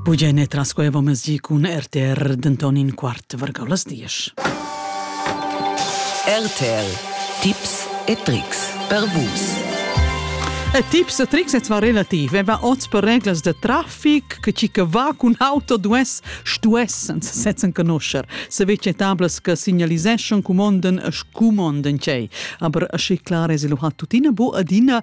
Bugie ne trascuevo mesi cun RTR denton in quart vargau las diesch. RTR Tipps e Tricks per Vus. E tips e tricks et va relativ. E va oz per reglas de traffic che chi che va cun auto duess stuessen setzen conoscer. Se vece tablas che signaliseschon cumonden e scumonden cei. Aber schi clar es lo hat tutina bu adina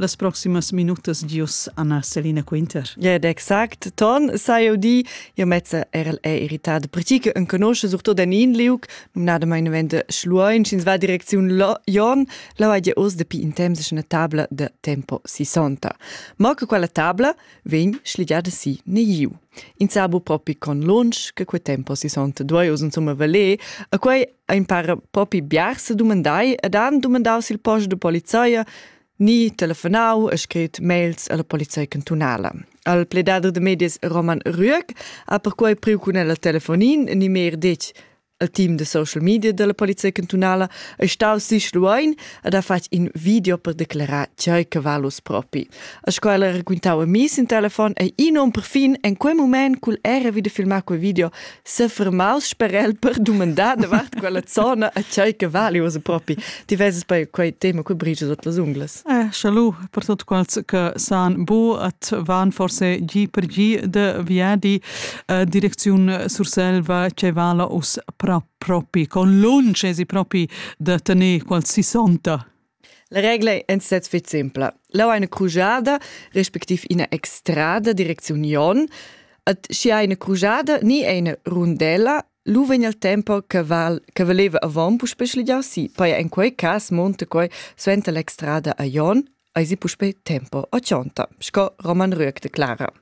las proximas minutas gius Anna Selina Quinter. Ja, exact. Ton sai eu di, io mezza er'el è irritat, perché che enconosce surtout den in liuc, numnada mai vende Schluein, sch'ins va direcziun Jon, la vai oz depi in temps una tabla de tempo 60. Ma che quella tabla vegn schligiada si ne iu. In sabu propi con lunch che quei tempo 60 duoi us insomma valer, a quei ein para propi biars se dumandai ed han dumandau sil post de polizia ni telefonau e scrit mails alla polizia cantunala. Al pledader de medias Roman Rüeg ha perquei priu cun el telefonin ni meir detg al team de social media della polizia cantunala è staus sich luein ed ha fatg in video per declarar tgei che valus propi. A scola raquintau a mi sin telefon e in um perfin en quei moment cul era wieder filmar quei video sefermaus sper el per dumandar davart quella zona a tgei che vali ussa propi. Ti veses poi quei tema qui brige tot las ungles. Eh, schalu, per tot quals che san bu at van forse gi per gi de viadi eh, direcziun Surselva che vala us pra propi con lunch esi propi da tenere qual si sonta. La regla è stat fitg simpla. Là è ina crujada, respectiv ina extrada, direcziun Jon, Ed schi ha ina crujada ni ina rundella, lu vegn il tempo che val che valeva avon puspei schligiar si. Poi in quei cas monta quei suenter l'extrada a Jon, ai si puspei tempo a Cionta, sco Roman Rüegg declara.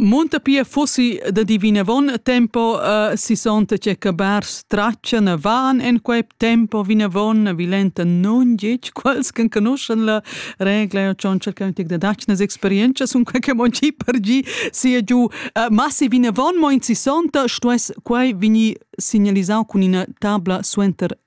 Munta pia fussi da dir vinavon tempo uh, sissonta che cabars tratschan a van en quei tempo vinavon vilenta nun gitg quels che conoschan la regla e schon cerca un tic da dacnas experienza sun quei che mon gi per gi sia giu uh, ma se vinavon mo in sissonta stuess quei vini signalisau cun ina tabla suenter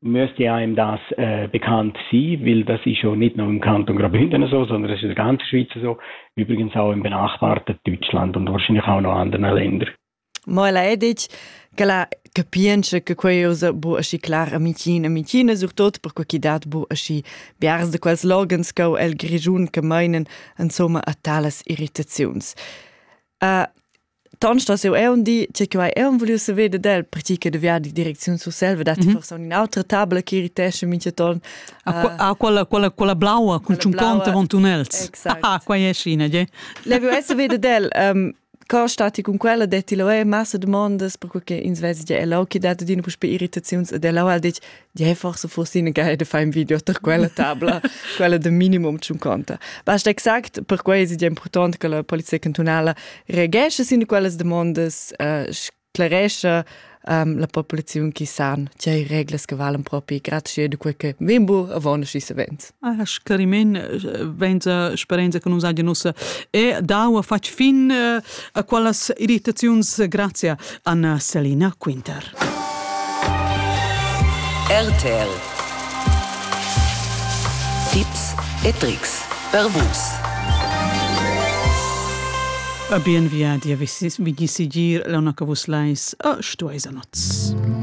Müstair das äh, bekannt sie, weil das ist schon nicht nur im Kanton Graubünden so, sondern es ist in der ganzen Schweiz so, übrigens auch im benachbarten Deutschland und wahrscheinlich auch noch anderen Ländern. Ma ella è detg che la capientscha che quei usa bu aschi clar a Michina, Michina surtot per quei chi dat bu aschi biars de quels loghens co el Grischun che meinen insomma a talas irritaziuns. Uh, Ton sto seu eun di che quai eun vuliu se vede del perché che de viadi direcziun sur selva dat mm -hmm. forse un'altra tabla che irritesce mince ton a, uh, a quella quella quella blaua con un ponte von tunnels exact ah qua è scina je le vu esse vede del um, Cor stati con quella detti lo è massa domandas per che ins vesi je è lo che dato dina puspe irritazions ed è lo al dich Ja, forse fossi in guide fa un video per quella tabla, quella de minimum zum conta. Basta exact per quei è important che la polizia cantonala reagesce sin quelle domande, uh, sclaresce um, la popolazione chi san, c'è regles che valen proprio grazie a quel che vimbo avon schi savens. Ah, scarimen vainsa sperenza che nus hagian ussa e dau a fatg fin eh, a quellas irritaziuns grazia Anna Selina Quinter. RTL Tipps e Tricks per vus. A bien via di a vigni sigir la una che vus lais a stueis a noz.